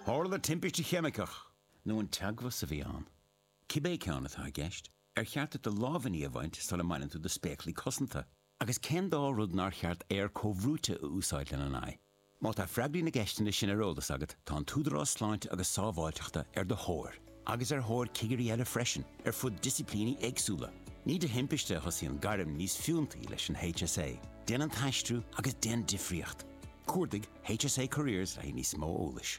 Tharla timpiste cheimiceach. nó an teagmhas é a bhí ann. Cibé ceann atá i gceist, ar cheart duit do lámhainní a bhaint sula mbaineann tú do spéaclaí cosanta? Agus cén dá rud nár cheart aer comhbhrúite a úsáid lena n-aghaidh? Má tá freagraí na gceisteanna sin ar eolas agat, tá an tÚdarás Sláinte agus Sábháilteachta ar do thóir, agus ar thóir cigirí eile freisin, ar fud disciplíní éagsúla. Ní de thimpiste a thosaíonn gairm níos fiúntaí leis an HSA, déan an t-aistriú agus déan difríocht! Cuardaigh HSA Careers le haghaidh níos mó eolais.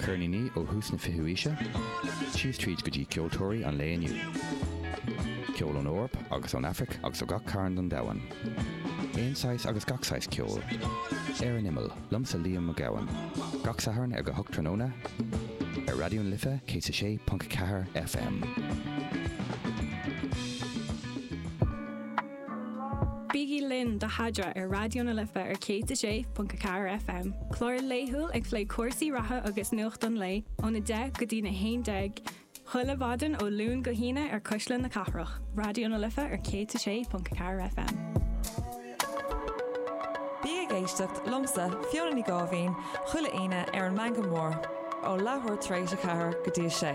Ceirníní ó thús na fichiú aoise síos tríd go dtí ceoltóirí an lae inniu. Ceol ón Eoraip agus ón Aifric agus ó gach cearn den domhan. Aon saghas agus gach saghas ceol. Ar an imeall, liomsa Liam Mac Gabhann. Gach Satharn ag a hocht tráthnóna ar Raidió na Life 106.4 FM. Bígí linn do Adhmhaidin ar Raidió na Life ar 106.4 FM, clár laethúil ag plé cúrsaí reatha agus nuacht an lae óna deich go dtína haon déag chuile mhaidin ó Luan go hAoine ar Cuisle na Cathrach, Raidió na Life ar 106.4 FM. Bí ag éisteacht liomsa Fiona Ní Gáibhín chuile Aoine ar an Meangadh Mór ó leathuair tar éis a ceathair go dtí a sé.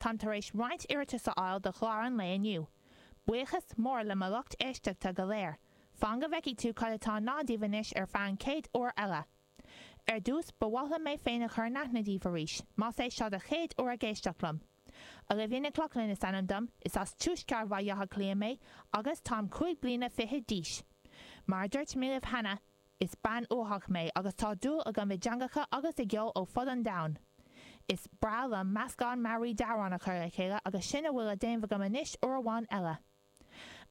Táim tar éis roinnt iarratas a fháil do chlár an lae inniu. Buíochas mór le mo lucht éisteachta go léir. Fan go bhfeicfidh tú cad atá i ndán daoibh anois ar feadh an chéad uair eile. Ar dtús, ba mhaith liom mé féin a chur in aithne daoibh arís, más é seo do chéad uair ag éisteacht liom. Olivia Nic Lochlainn is ainm dom, is as tuaisceart Bhaile Átha Cliath mé agus táim cúig bliana fichead d'aois. Mar a dúirt mé libh cheana, Is bean uathach mé agus tá dúil agam i dteangacha agus i gceol ó fud an domhain. Is breá liom meascán mearaí d'amhráin a chur le chéile agus sin a bhfuil le déanamh agam anois uair amháin eile.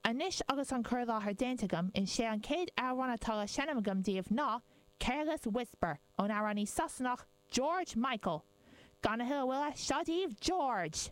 Anois agus an cur i láthair déanta agam, is é an chéad amhrán atá le seinm agam daoibh ná Careless Whisper ón amhránaí Sasanach George Michael! Gan a thuilleadh moille, seo daoibh George!